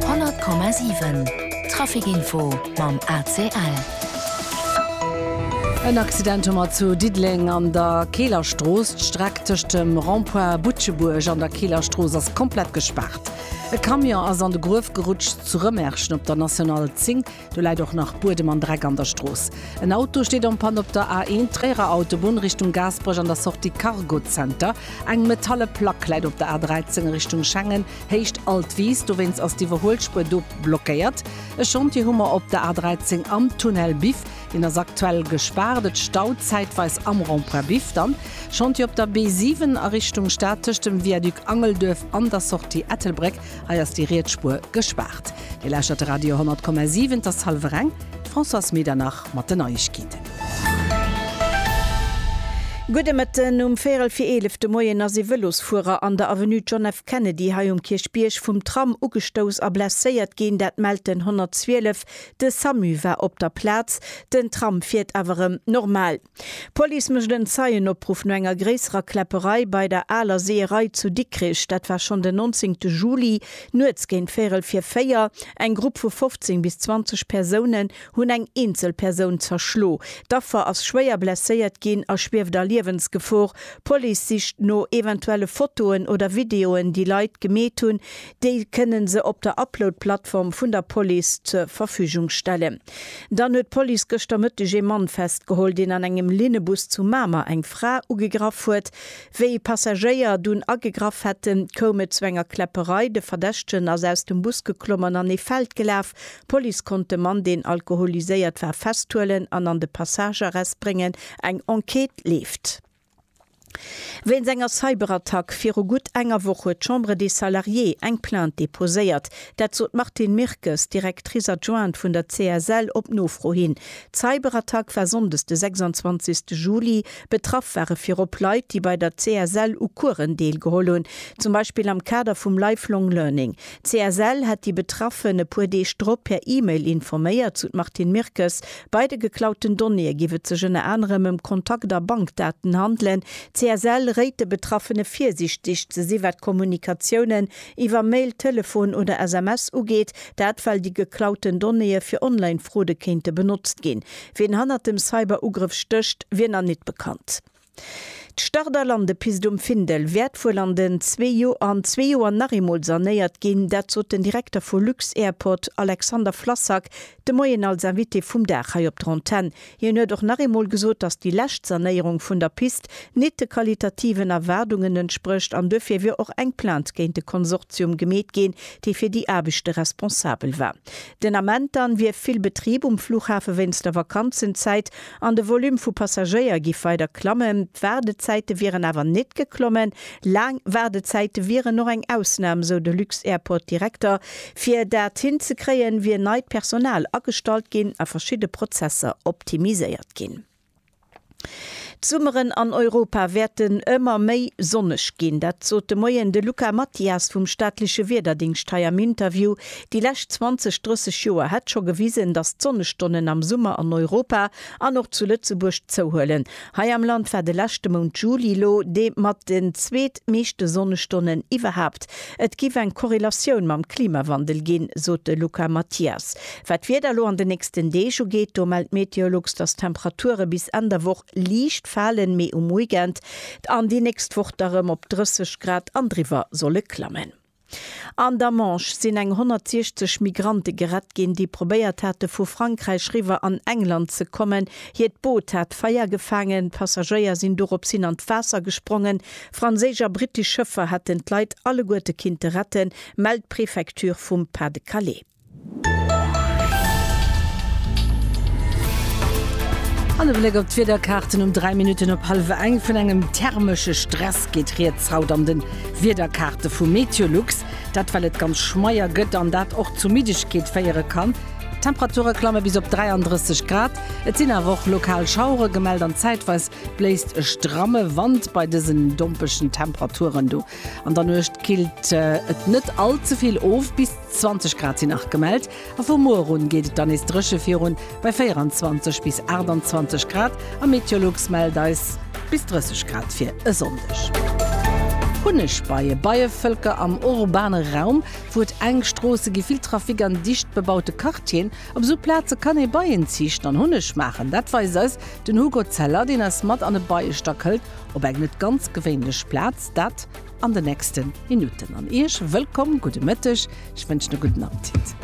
100,7 Trafic Info mam ACL. En Accident hu mer zu Diddeleng an der Keeler Strooss. D'Streck tëscht dem Rond-point Butschebuerg an der Keeler Strooss ass komplett gespaart. E Camion ass an de Gruef gerutscht zu Rëmerschen op der National 10. Do läit och nach Buedem an Dreck an der Strooss. En Auto steet en panne op der A1 Tréierer Autobunn Richtung Gaasperech an der Sortie Cargo Center. Eng metalle Plack läit op der A13 Richtung Schengen, Héicht Altwiis. Dowéinst ass d'Iwwerhuelspuer do blockéiert. E Chantier hu mer op der A13 am Tunnel Biff. Deen ass aktuell gespaart. Et staut zäitweis am Rond-point Biff. Dann Chantier op der B7 a Richtung Stad tëscht dem Viaduc Angelduerf an der Sortie Ettelbréck. Hei ass déi Rietsspuer gespaart. Dir lauschtert de Radio 10,7, et ass hallwer eng. D'Françoise Medernach mat den Neiegkeeten. Gudde Mëtten. Um véierel fir eelef de Moien ass ee Vëlosfuerer an der Avenue John F. Kennedy hei um Kierchbierg vum Tram ugestouss a blesséiert ginn. Dat mellt den 112. De Samu war op der Plaz. Den Tram fiert awer erëm normal. D'Police mécht en Zeienopruff no enger gréisserer Kläpperei bei der Aler Seeërei zu Dikrich. Dat war schonn den 19 te Juli, nuets géint véierel vir véier. Eng Grupp vu 15 bis 20 Persounen hunn eng eenzel Persoun zerschlo. D'Affer ass schwéier blesséiert ginn a schwieft a Liewensgefor. D'Police sicht no eventuelle Fotoen oder Videoen, déi Leit gemeet hunn. Déi kënne se op der Upload-Plattform vun der Police zur Verfügung stellen. Dann huet d'Police gëschter Mëtteg ee Mann festgeholl, deen an engem Linnebus zu Mamer eng Fra ugegraff huet. Wéi Passagéier dunn agegraff hätten, koum et zu enger Kläpperei. De Verdächtegen ass aus dem Bus geklomm an an ee Feld gelaf. D'Police konnt de Mann, deen alkoholiséiert war, festhuelen an an de Passagearrest bréngen. Eng Enquête leeft. Wéinst enger Cyberattack viru gutt enger Woch huet d'Chambre des Salariés eng Plainte deposéiert. Dat sot d'Martine Mirkes, Directrice adjointe vun der CSL, op Nofro hin. D'Cyberattack war sonndes de 26 Juli. Betraff ware virop Leit, déi bei der CSL u Coursen deelgeholl hunn, zum Beispill am Kader vum Lifelong Learning. D'CSL hätt déi Betraffen e puer Deeg drop per E-Mail informéiert, sou d'Martine Mirkes. Bei de geklauten Donnéeë géif et sech ënner anerem ëm Kontakt a Bankdaten handelen. D'CSL réit de Betraffene virsiichteg ze si wat Kommunikatiounen iwwer Mail, Telefon oder SMS ugeet. Dat well déi geklauten Donnéeë fir Online-Fraude kéinte benotzt ginn. Wien hannert dem Cyber-Ugrëff stécht, wier nach nit bekannt. D'Start a Landepist um Findel wäert wuel an den zwee Joer an zwee Joer nach eemol sanéiert ginn. Dat sot den Direkter vu lux-Airport Alexander Flassak de Moien als Invité vum Dag hei op der Antenn. Hien huet och nach eemol gesot, datt déi lescht Sanéierung vun der Pist nit de qualitativen Erwaardungen entsprécht an duerfir wier och eng Plainte géint de Konsortium gemeet ginn, dee fir déi Aarbechte responsabel war. Den Ament dann wier vill Betrib um Flughafe wéinst der Vakanzenzäit an de Volume vu Passagéier giff weider klammen. D'Waardezäite wieren awer nit geklommen. Laang Waardezäite wieren och eng Ausnam, sou de Lux-Airport-Direkter. Fir dat hin ze kréien, wier neit Personal agestallt ginn a verschidde Prozesser optimiséiert ginn. D'Summeren an Europa wäerten ëmmer méi sonneg ginn. Dat sot de Moien de Luca Mathias vum staatleche Wiederdéngscht hei am Interview. Déi lescht 20, 30 Joer hätt scho gewisen, datt d'Sonnestonnen am Summer an Europa an och zu Lëtzebuerg zouhuelen. Hei am Land war de leschte Mount Juli lo dee mat den zweet meeschte Sonnestonnen iwwerhaapt. Et giff eng Korrelatioun mam Klimawandel ginn, sot de Luca Mathias. Wat d'Wieder elo an de nächsten Deeg ugeet, do mellt Meteolux, dass d'Temperature bis Enn der Woch liicht falen, mee um Weekend an déi nächst Woch da rëm op 30 Grad an driwwer solle klammen. An der Manche sinn eng 160 Migrante gerett ginn, déi probéiert hate vu Frankräich riwwer an England ze kommen. Hiert Boot hat Feier gefaangen, d'Passagéier sinn dorops hin an d'Waasser gesprongen. Franséisch a brittesch Schëffer hätten d'Leit alleguerte kinnte retten, mellt d'Prefecture vum Pas-de-Calais. An e Bléck op d'Wiederkaarten um 3 Minutten op hallef eng. Vun engem thermesche Stress geet rieds haut an de Wiederkaarte vu Meteolux. Dat well et ganz schmeier gëtt an dat och zu Middegkeet féiere kann. D'Temperature klamme bis op 33 Grad. Et sinn awer och lokal Schauere gemellt an zäitweis bléist e stramme Wand bei dësen dompegen Temperaturen do. An der Nuecht killt et net all ze vill of bis. 20 Grad sinn nach gemellt a vu muer un geet et dann nees dréche virun bei 24 bis 28 Grad a Meteolux mellt eis bis 30 Grad fir e Sonndeg. Hunnegbeie, Beievëlker am urbane Raum, wou et enk Stroosse gi, vill Trafic an dicht bebaute Quartieren. Op esou Plaze kann ee Beien ziichten an Hunneg maachen. Dat weist eis den Hugo Zeller, deen eis mat an e Beiestack hëlt, op eng net ganz gewéinlech Plaz, dat an den nächsten Minuten an Iech wëllkomm gudde Mëtteg, ech wënschen e gudden Appetit.